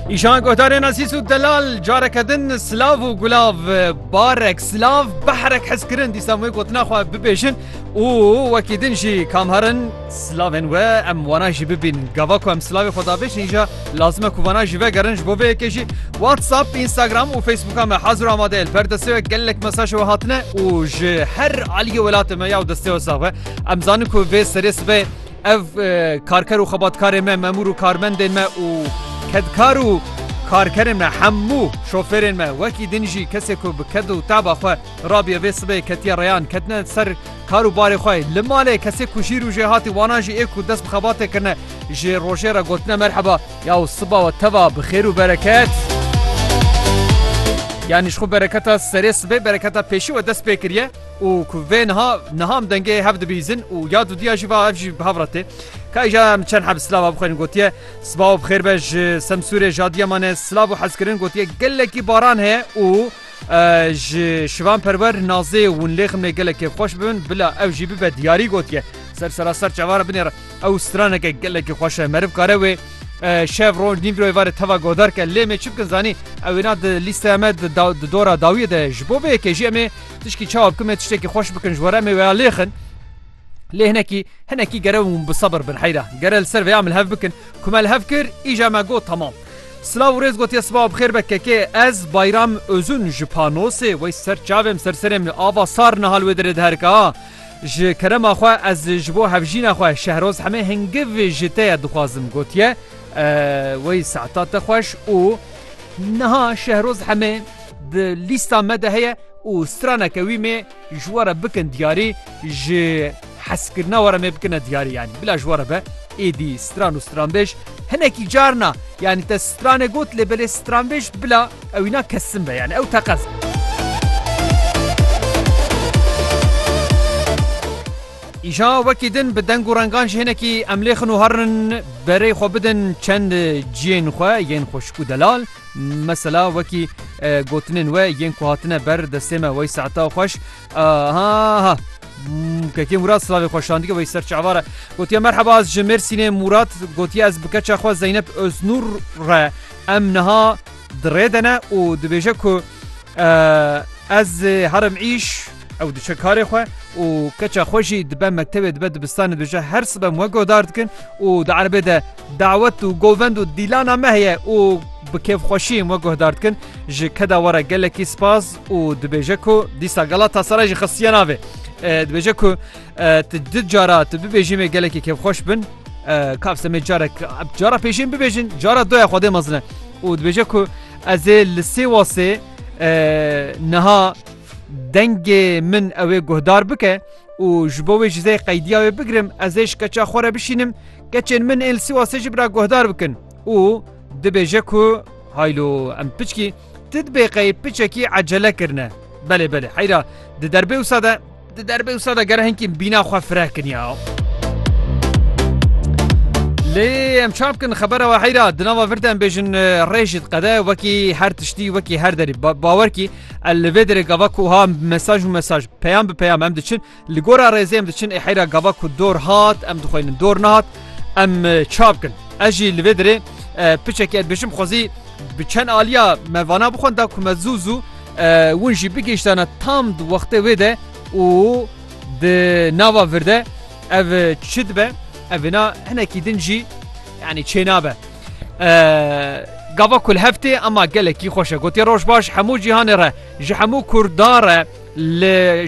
Îşan Godarên Asîs û Delal careke din silav û gulav barek silav behrek hez kirin dîsa wê gotina xwe bibêjin û wekî din jî kamherin silavên we em wana jî bibîn gava ku em silavê xwe dabêjin îja lazime ku wana jî vegerin ji bo vê yekê jî WhatsApp Instagram û Facebooka me hazir amade li ber destê we gelek mesaj we hatine û ji her aliyê welatê me ya û destê we sax be em zanin ku vê serê sibê Ev karker û xebatkarên me, memûr û karmendên me û kedkar û karkerên me hemû şofêrên me wekî din jî kesê ku bi ked û teaba xwe rabiye vê sibê ketiye reyan ketine ser kar û barê xwe li malê kesê ku jî rûjê hatî wanan jî ê ku dest bi xebatê kirine ji rojê re gotine merheba yaw siba we teva bi xêr û bereket. Yanî ji xwe bereketa serê sibê bereketa pêşî we dest pê kiriye. û ku vê niha niha em dengê hev dibîzin û ya dudiya jî va ev jî bi hev re tê. Ka îja em çend heb silava bixwêrin gotiye sibaw bi xêr be ji Semsûrê ji Adîyamanê silav û hezkirin gotiye gelekî baran heye û ji Şivan Perwer Nazê hûn lê ximnê gelekê xweş bibin bila ew jî bibe diyarî gotiye ser seraser çavara binê re ew straneke gelekî xweş e meriv kare wê şev roj nîv royê varê teva godarke lê me çi bikin zanî ewêna di lîsteya me di dora dawiyê de ji bo vê yekê jî em ê Tişkî çawa bikim em tiştekî xweş bikin ji we re em ê wêya lêxin. Lê hinekî hinekî gere hûn bi sebir bin heyra. Gere li ser vêya min hev bikin. Ku me li hev kir îja me got temam. Silav û rêz gotiye sibawa bi xêr be kekê. Ez Bayram Ozun ji Panosê wey ser çavê em ser serê em li ava sar niha li wê derê diherika. Ji kerema xwe ez ji bo hevjîna xwe Şehroz Hemê hingiv ji te ye dixwazim gotiye. Wey saeta te xweş û niha Şehroz Hemê di lîsta me de heye û straneke wî mê ji we re bikin diyarî ji heskirina we re mê bikine diyarî yanî bila ji we re be êdî stran û stranbêj hinekî carna yanî te stranê got lê belê stranbêj bila ewîna kesin be yani ew teqez be. Îja wekî din bi deng û rengan ji hinekî em lêxin û herin berê xwe bidin çend ciyên xwe yên xweşik û delal Mesela wekî gotinên we yên ku hatine ber destê me wey saeta xweş ha kekê Murat slavê xweşandike wey ser çavare gotiye merheba ez ji Mêrsînê Murat gotiye ez bi keça xwe Zeynep Öznur re em niha dirê de ne û dibêje ku ez herim îş ew diçe karê xwe û keça xwe jî dibe mektebê dibe dibistanê dibêje her sibem we godar dikin û di erebê de Dawet û govend û dîlana me heye û bi kêfxweşiyê me guhdar dikin. Ji keda we re gelekî spas û dibêje ku dîsa Galatasaray jî xistiye navê. Dibêje ku tu du cara tu bibêjî me gelekî kêfxweş bin. Kavse me carek cara pêşên bibêjin cara doya xwedê mezine û dibêje ku ez ê li sê wasê niha dengê min ew ê guhdar bike û ji bo wê ji zê qeydiya wê bigirim ez ê ji keça xwe re bişînim Keçên min ên li Sîwasê jî bira guhdar bikin û dibêje ku haylo em piçkî ti dibê qey piçekî ecele kirine. Belê belê heyra di derbê wisa de di derbê wisa de gere hinkî bîna xwe fireh kiriya. Lê em çap bikin xebera we heyra di nava vir de em bêjin rê jî diqede wekî her tiştî wekî her derî bawerkî el li vê derê gava ku ha mesaj û mesaj peyam bi peyam em diçin Li gora rêzê em diçin ê heyra gava ku dor hat em dixwînin dor nehat em ça bikin. Ez jî li vê dirê piçekî ez bêjim xwezî bi çend aliya me vana bixwin da ku me zû zû win jî bigihiştana tam di wextê wê de û di nava vir de ev çi dibe evêna hinekî din jî yanî çênabe. Gava kul heftê ema gelekî xweşe gotiye roj baş hemû cîhanê re ji hemû Kurda re li